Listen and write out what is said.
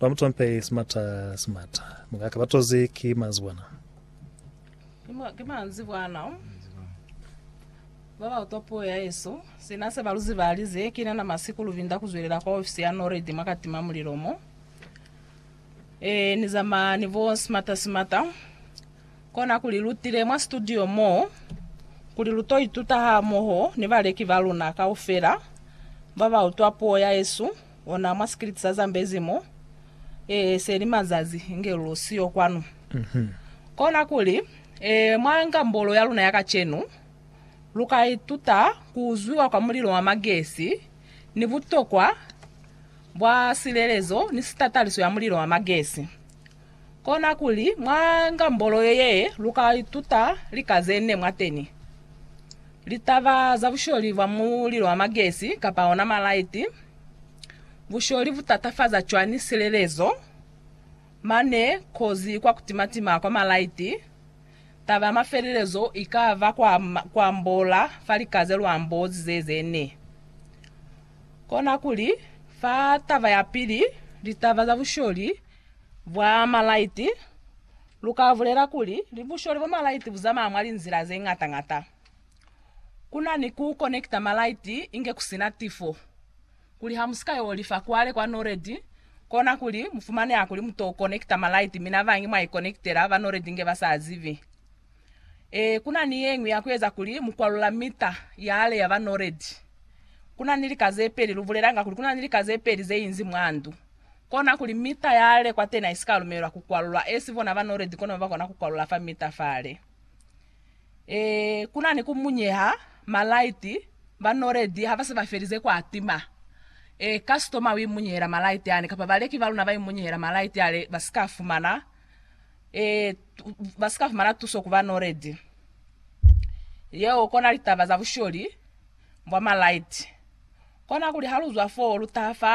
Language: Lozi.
Ba mu tompeli simata simata. Mukaka ba tozi ki manzibwana. Ki manzibwana. Ba ba utwa puo ya Yesu. Sina se ba lu ziba alize, Ki nana masiku lu binda ku zwelela kwa ofisi ya NORAD mwa katima mulilo mo. Ee, ni zamaya ni bo simata simata. Kona kuli lu tile mwa situdio mo, kuli lu to ituta hamoho ni baleki ba luna kaufela ba ba utwa puo ya Yesu. Ona mwa sikiliti sa Zambezi mo, ee, se li mazazi inge lu siyo kwanu. Kona kuli, ee, mwa ngambolo ya luna ya kacenu, lu ka ituta ku uzwiwa kwa mulilo wa magesi, ni butokwa bwa silelezo ni sitataliso ya mulilo wa magesi. Kona kuli mwa ngambolo ye ye lu ka ituta lika ze ne mwa teni, litaba za busholi bwa mulilo wa magesi kapa ona malaiti, busholi bu tatafaza cwani silelezo, mane kozi kwa ku timatima kwa malaiti, taba ya mafelelezo i ka ba kwa, kwa ambola fa lika ze lu ambozize ze ne. Kona kuli, fa taba ya pili, litaba za busholi Bwa malaiti, Lu ka bulela kuli ni busholi bwa malaiti bu zamaya mwa linzila ze ñata ñata. Ku na ni ku konekita malaiti inge ku si na tifo. Kuli ha mu si ka yo lifa kwale kwa Noredi, kona kuli mu fumaneha kuli mu to konekita malaiti mi na bañi mwa ikonekitela ba Noredi inge ba sa zibi. Ee, ku na ni ye ñwi ya ku eza kuli mu kwalula mita ya ale ya ba Noredi. Ku na ni lika ze peli, Lu bulelanga kuli ku na ni lika ze peli ze inzi mwa ndu. kona kuli mita ya le kwatena isika lumelelwa ku kwalulwa as bona ba knowled kono ba kona ku kwalula fa mita fale. E, kuna ni ku munyeha, ma light, ba knowled ha ba se ba felize kwa tima. E, customer u imunyehela ma light ani, kapa baleki ba luna ba imunyehela ma light ale, ba si ka fumana, e, ba si ka fumana tuso ku ba knowled. Yeo kona litaba za busholi bwa ma light. Kona kuli ha lu zwa foo lu taha fa